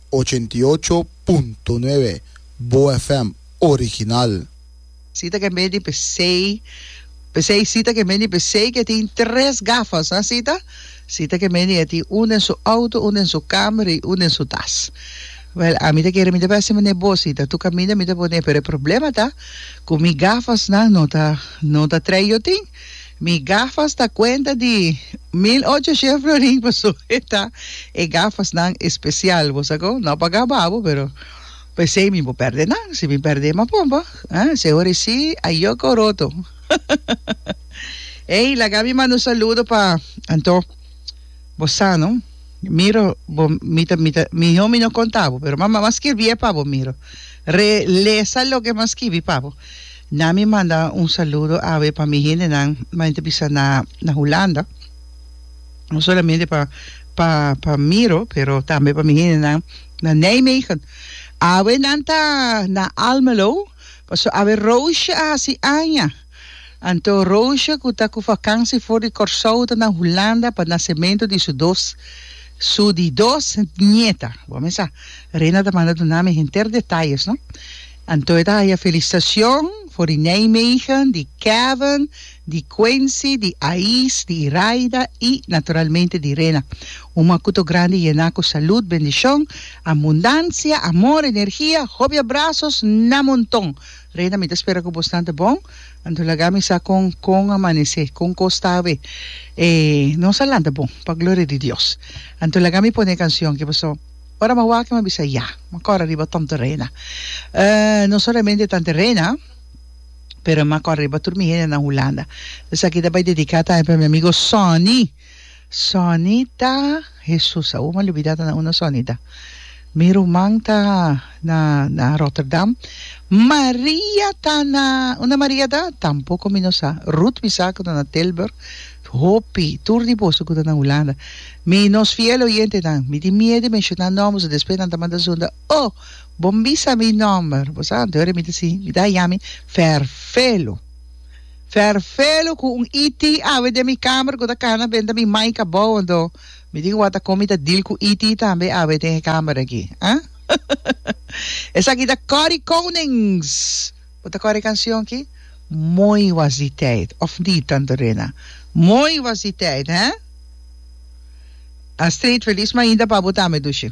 ochenta i ocho punto nuebe Boa FM original. Sita ke meni pesei pesei sita ke meni pesei ke tin tres gafas ha sita sita ke meni e tin un den su auto un den su kamer y un den su tas wel ami ta kere mi ta bèsè manera bo sita tu kaminda mi ta pone pero e problema ta ku mi gafasnan no ta no ta trei yo tin Mi gafas ta cuenta di mil ocho shien florin paso e ta e gafas nan especial bo sa con no paga babo pero pesey mi bo perde nan si mi perde mi a pompa ah se ora esi a yoco roto ey laga mi manda un saludo pa anto bo sa no miro bo mi ta mi ta miho mi no conta bo pero mama mi a skirbi e pa bo miro re lesa loke mi a skibi pa bo. Na mi manda un saludo awe pa mi hendenan main ta bisa na na Hulanda no solamente pa pa pa Miro pero tambe pa mi hendenan na Nijmegen awe nan ta na Almelo paso awe Roosje a hasi aña anto Roosje ku ta ku vakansi for di Kòrsou ta na Hulanda pa nasementu di su dos su di dos nieta bo a mesa Rena ta manda duna mi henter detayes no. Anto e ta haya felicitacion for di Nijmegen, di Kevin, di Quincy, di Ais, di Iraida y naturalmente di Rena. Un makuto grandi yena cu salud, bendicion, abundancia, amor, energia, hopi abrazos na monton. Rena mi ta spera cu bosnan ta bon. Anto laga mi sa con con a manece, con cos ta awe. E nos a lanta bon pa gloria di Dios. Anto laga mi pone e cancion, kibaso? Ora m'a wak, m'a bisa ya. M'a kòrè riba Tom Terena. No solamente tante Rena, pero m'a kòrè riba tur mi hende na Hulanda. Esaki ta bai dediká tambe pa mi amigo Sonny. Sonny ta, Hesus, awor m'a lubidá ta na unda Sonny ta. Mi ruman ta na, na Rotterdam. Maria ta na, unda Maria ta? Tampoko mi no sa. Ruth mi sa ku ta na Tilburg. Hopi, tur di boso ku ta na Hulanda. Mi, nos fiel oyentenan, mi tin mier di menshoná nòmbernan, despues nan ta manda zunda, Oh, bo mbisa mi nòmber! Bo sa anto hora mi ta si? Mi ta haña mi ferfelu. Ferfelu ku un ET awe den mi kamer ku ta kana benta na mi mai kabou anto. Mi tin wak ta kon mi ta dil ku ET tambe awe den e kamer aki. Esaki ta Cory Konings! Bo ta kor e kansion ki? Mooi was die tijd, of niet, Tante Rena? Mooi was die tijd, hè? A street feliz mainda pa bo tambe, Dushi.